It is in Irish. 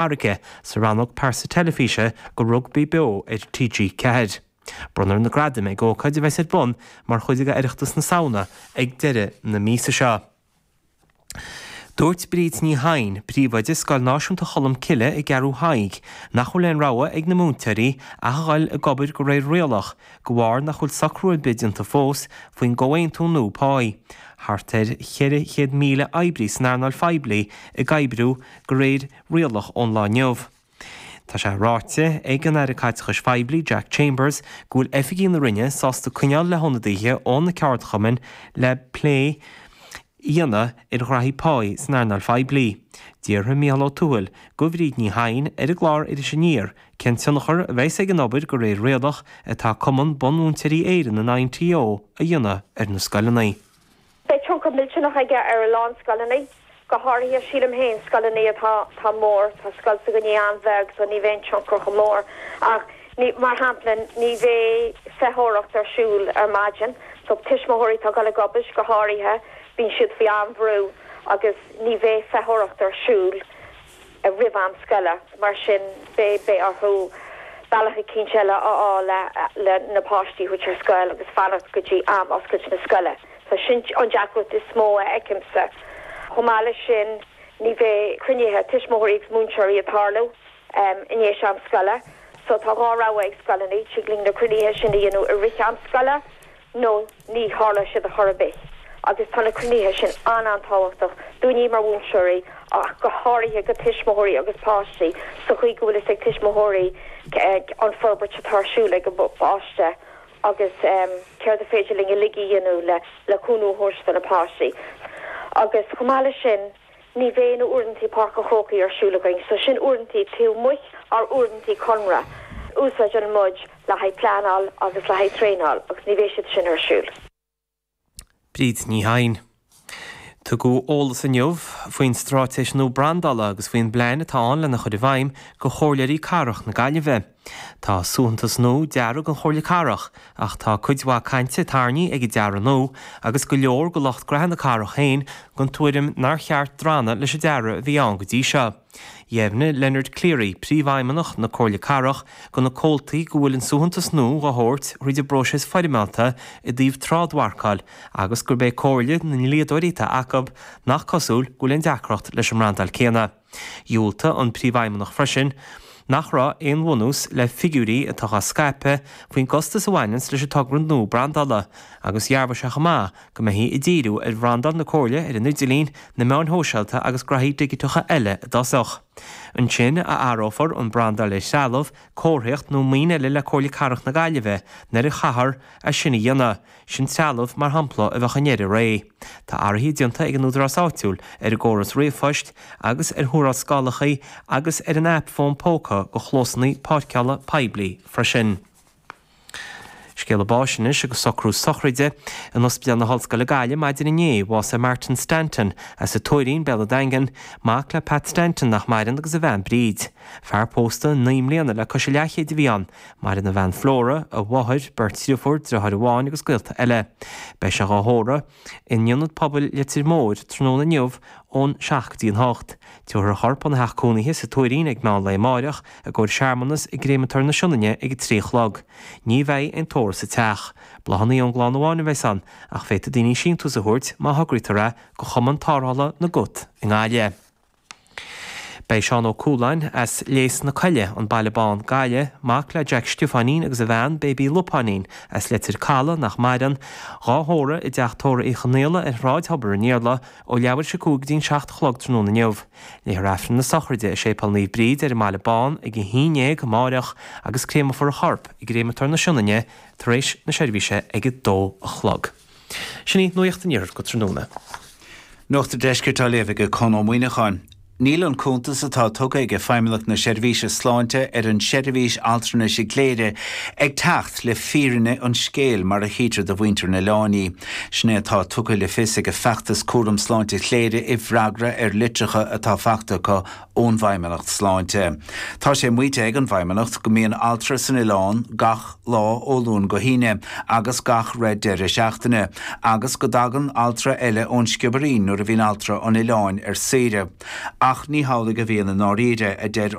Fharraige, sa rannóg Pearsa Teilifíse go Rugbaí Beo ar TG4. Bronnfar na gradaim ag ócáid a bheas ar bun mar chuid d'Oireachtas na Samhna ag deireadh na míosa seo. Dúirt Bríd Ní Sheighin, Príomhoide Scoil Náisiúnta Cholm Cille i gCeathrú Thaidhg, nach bhfuil aon rogha ag na múinteoirí ach a dhul ag obair de réir rialach de bharr nach bhfuil socrú ar bith déanta fós faoin gcomhaontú nua páí. Thart ar 400,000 oibrí san earnáil phoiblí ag oibriú de réir rialach ón lá inniu. Tá sé ráite ag an Aire Caiteachais Phoiblí Jack Chambers go bhfuil oifigigh na Roinne sásta castáil le hionadaithe ó na ceardchumainn le plé a dhéanamh i ngraithí páí san earnáil phoiblí. D'fhiafraigh Micheál Ó Tuathail de Bhríd Ní Sheighin ar an gclár Iris Aniar cén tionchar a bheas ag an obair de réir rialach atá Cumann Bunmhúinteoirí Éireann an INTO a dhéanamh ar na scoileanna. Beidh tionchar millteanach aige ar a lán scoileanna, go háirithe, sílim féin, scoileanna atá mór. Tá scoil s'againne an-bheag so ní bheidh an tionchar chomh mór ach, mar shampla, ní bheidh feitheoireacht ar siúl ar maidin so tuismitheoirí atá ag dul ag obair, go háirithe, bíonn siad faoi an-bhrú agus ní bheidh feitheoireacht ar siúl. roimh am scoile. Mar sin, beidh orthu bealach eicínt eile a fháil le na páistí a thabhairt ar scoil agus fanacht go dtí am oscailt na scoile. So sin an deacracht is mó a fheicimse. Chomh maith leis sin, ní bheidh cruinnithe tuismitheoirí agus múinteoirí ag tarlú i ndéis am scoile. So tá dhá rogha ag scoileanna, tig linn na cruinnithe sin a dhéanamh i rith am scoile nó ní tharlóidh siad ar chor ar bith agus tá na cruinnithe sin an-an-tábhachtach dúinne mar mhúinteoirí ach go háirithe do thuismitheoirí agus páistí sa chaoi go bhfuil fhios ag tuismitheoirí an forbairt atá ar siúl ag a bpáiste agus céard is féidir linn uilig a dhéanamh le cúnamh a thabhairt do na páistí agus chomh maith leis sin. Ní bheidh na uaireantaí Páirc an Chrócaigh ar siúl againn so sin uaireantaí taobh amuigh dár uaireantaí conradh a úsáideann muid le haghaidh pleanáil agus le haghaidh traenáil agus ní bheidh siad sin ar siúl. Bríd Ní Sheighin. Tugadh eolas inniu faoin straitéis nua brandála agus faoin bplean atá ann lena chur i bhfeidhm do chomhairleoirí Cathrach na Gaillimhe. Tá suaitheantas nua deartha don Chomhairle Cathrach ach tá cuid mhaith cainte tarraingthe ag an dearadh nua agus go leor de lucht graithe na cathrach féin den tuairim nár cheart drannadh leis an dearadh a bhí ann go dtí seo. Dheimhnigh Leonard Cleary, Príomhfheidhmeannach na Comhairle Cathrach, do na comhaltaí go bhfuil an suaitheantas nua á thabhairt tríd an bpróiseas foirmeálta i dtaobh trádmharcáil agus gurb é comhairle na ndlíodóirí atá acu nach cosúil go bhfuil aon deacracht leis an mbrandáil céanna. Dúirt an Príomhfheidhmeannach freisin nach raibh aon bhunús le figiúirí atá dhá scaipeadh faoin gcostas a bhaineann leis an togra nua brandála agus dhearbhaigh sé chomh maith go mbeifí ag díriú ar bhrandáil na Comhairle ar an idirlíon, na meáin shóisialta agus gnaithí digiteacha eile i dtosach. Ansin a áireofar an brandáil ar threalamh, comharthaíocht nó maoin eile le Comhairle Cathrach na Gaillimhe nuair a chaithfear é sin a dhéanamh. Sin trealamh, mar shampla, a bheadh i ndeireadh ré. Tá athruithe déanta ag an údarás áitiúil ar an gcóras ríomhphoist agus ar thuarascálacha agus ar an aip fón póca do chlósannaí páirceála poiblí freisin. Scéala báis anois agus socrú sochraide in Ospidéal na hOllscoile Gaillimh maidin inné bhásaigh Martin Stanton as an Tuairín, Béal an Daingin, mac le Pat Stanton nach maireann agus a bhean Bríd. Fear pósta naoi mbliana le cois a leathchéid a bhí ann. Maireann a bhean Flora, a mháthair, beirt driofúr, driotháir amháin agus gaolta eile. Beidh sé dhá thórramh in Ionad Pobail Leitir Móir tráthnóna inniu ón seacht go dtí an hocht. Tabharfar a chorp óna theach cónaithe sa Tuairín ag meán lae amáireach i gcomhair searmanas i gCréamatóir na Sionainne ag a trí a chlog. Ní bheidh aon tórramh sa teach. Bláthannaí ón gclann amháin a bheidhs ann ach féadfaidh daoine síntiús a thabhairt má thograítear é do Chumann Tárrthála na gCat i nGaillimh. Beidh Seán Ó Cualáin as Lios na Coille, An Baile Bán, Gaillimh, mac le Jack Stiofáinín agus a bhean Baby Lupáinín as Leitir Caladh, nach maireann, dhá thórramh i dTeach Tórraimh Uí Chonaola ar Shráid Thobar an Iarla ó leathuair tar éis a 5 go dtí an 7 a chlog tráthnóna inniu. Léifear Aifreann na sochraide i Séipéal Naomh Bríd ar an mBaile Bán ag 11 amáireach agus créamofar a chorp i gCréamatóir na Sionainne tar éis na seirbhíse ag 2 a chlog. Sin í nuaíocht an iarthair go tráthnóna. Nuacht an deiscirt á léamh ag Con Ó Muíneacháin. Níl an cuntas atá tugtha ag Feidhmeannacht na Seirbhíse Sláinte ar an seirbhís altranais i gCléire ag teacht le fírinne an scéil mar a chítear do mhuintir an oileáin í. Sin é atá tugtha le fios ag an feachtas Cúram Sláinte Chléire i bhfreagra ar litreacha atá fachta acu ón bhFeidhmeannacht Sláinte. Tá sé maíte ag an bhFeidhmeannacht go mbíonn altra san oileán gach lá ó Luan go hAoine agus gach re deireadh seachtaine agus go dtagann altra eile ón Sciobairín nuair a bhíonn altra an oileáin ar saoire ach ní hamhlaidh a bhíonn i ndáiríre, a deir